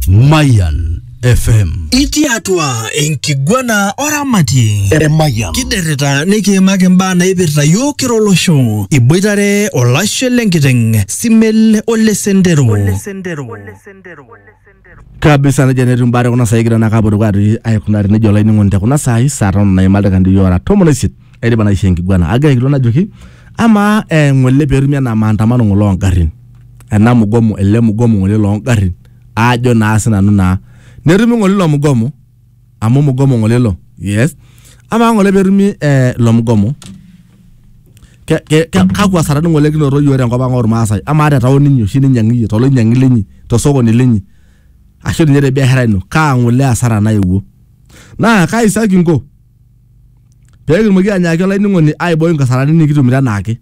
Mayan FM. Itii atua enkiguana oramatie. Eremayian. Kiderrita nikiimaki imbaa naipirta yiok kira olosho. Iboitare olashe lenkiteng, Simel ole Sendero. kabisa nejia netiu mbaa tekuna saai kigira naake apotoki atii aikunari nejia olainining'oni tekuna saai saa tomon naima ildaikani ora tomon oisiet aidipa naisho enkiguana agira aikilikuan ajoki amaa eh, ng'ole peetumi enaa maandamano ng'ole ongarrin ena mugomo ele mugomo ng'ole loo ngarrin aajo naa sinanu naa netumi ng'ole ilo mugomo amu mugomo ng'ole ilo yes amaa ng'ole petumi eh, ilo mugomo ke, ke, ke, kakwa sarani ng'ole kinoto yiok tenkop ang ormaasai amaa te taon inyi oshi ninyiang'i iyie toloinyiang'i linyi tosokoni linyi ashu ninye te biashara ino kaa ng'ole asara naewuo naa kaisa kinko pee kitumoki anyaaki olainining'oni aiboi nkasarani nikitumito enaake.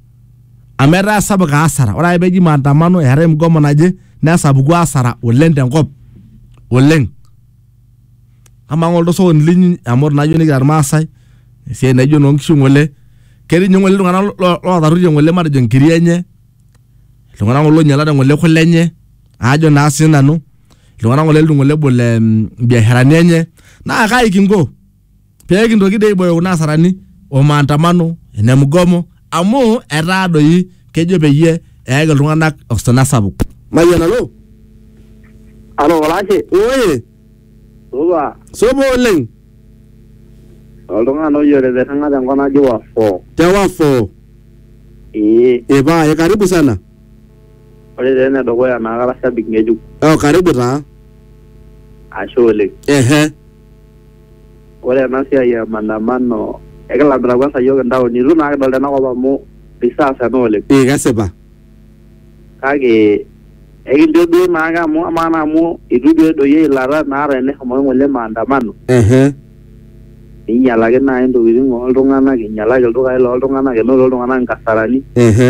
Amu etaa sapuk asara, ore ake peji maandamano eetae mgomo naje nesapuku asara oleng te nkop oleng. Amaa ng'ole osokoni linyi amu ore naa iyiok nikira irmaasai esiai naijo enoo nkishu ng'ole, ketii nye ng'ole iltung'anak lo lotaruetie ng'ole matejo nkiri enye, iltung'anak ng'ole oinyalate ng'ole kule enye aajo naa sinanu, iltung'anak ng'ole litu ng'ole ebol mbiasharani enye naa kai kinko? pee kintoki dei aibooyo kuna asarani o maandamano ene mgomo amu etaa doi kejo peyie eyaki iltung'anak osina sapuk. Mayian alo. Alo olashe, Oye, supa, sopo oleng. oltung'ani ojo tetirring'a tenkop naji Wafo. Te Wafo. Ee, Ipae, karibu sana. ore taa enedukuya naa kara shabik ng'ejuk. Oh, karibu taa. Ashe oleng. Ehe. Ore ena siai e maandamano ekilamita kwanza iyiook intaoni itu naa kidol tenakop amu reserve ena oleng. Ee kesipa. Kake ekincho duo naake amu amaa naa amu itu duo edoyio eilata naa teneshomoki ng'ole maandamano Ehe. ninyalaki naai intokiting oltung'anak, inyalaki ildukai looltung'anak, enoto iltung'anak inkasarani. Ehe.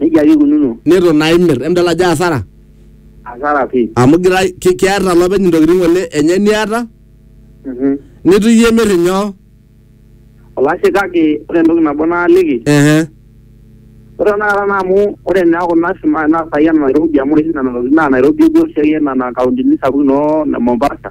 Nejia ake ikununo. neitu naa imir emidol ajo asara Asara pii. amu girai ki- keeta olopeny intokitin ng'ole enye niata Mhm. nitu iyie imir inyoo Olashe kake ore entoki nabo naaliki ehe ore tenakata naa amu ore naa kuna sima naa saai ena Nairobi amu ore oshi nena tokitin naa Nairobi epuo oshiake nena kauntini sapukin noo Mombasa.